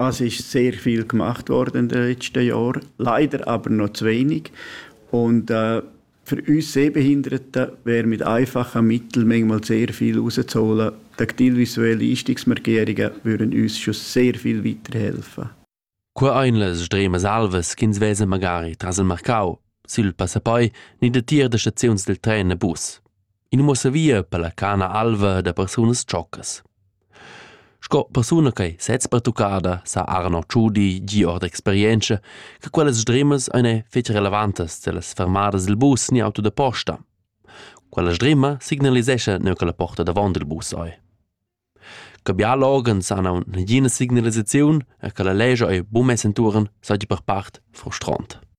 Also ist sehr viel gemacht worden in den letzten Jahren, leider aber noch zu wenig. Und äh, für uns Sehbehinderte wäre mit einfachen Mitteln manchmal sehr viel rauszuholen. Die aktielvisuellen Leistungsmarkierungen würden uns schon sehr viel weiterhelfen. Cur einles stremas alvas ch'ins vesa magari tras il marcau, sil passapoi ni da tier da staziuns del tren e bus. In muossa via per la cana alva da persunas tschoccas. Sco persuna ch'ei sez pertuccada sa Arno Tschudi gie ord experientscha che quellas sdrimas ein ei fetg relevantas dallas fermadas dil bus ni auto da posta. Quella sdrima signalisescha neu che la porta davon dil bus ei. Che biala organs han aunc negina signalisaziun e che la lescha ei buca mess entuorn seigi per part frustront.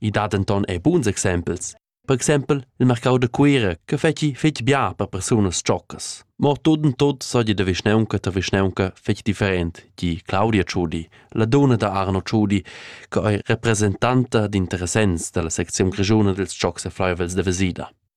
I dat denton er buns exempels. Per exempel il marcau da Cuira che fetschi fetg bia per persunas tschoccas. Mo tut en tut sogli da vischnaunca ta vischnaunca fetg different, di Claudia Ciudi, la dona da Arno Ciudi, che ei representanta d'interessents dalla secziun grischuna dils tschocs e fleiuvels da Vesida.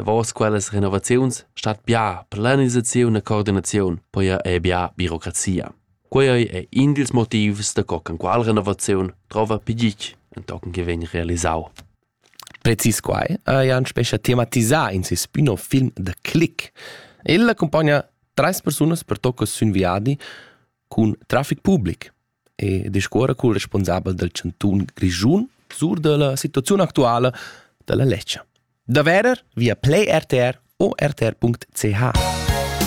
Davos quellas renovaziuns stat bia planisaziun e coordinaziun, poi er bia birocrazia. Quei è in dils motivs da co qual renovaziun trova pigich entochen che vegn realisau. Precis quai ha Jan Spescha thematisà in ses spin-off film The Click. El accompagna treis persunas per tocca sün viadi cun traffic public. e discuora cul responsabel dal chantun Grischun sur dalla situaziun actuala dalla Lecce. Da verer via Play RTR o rtr.ch.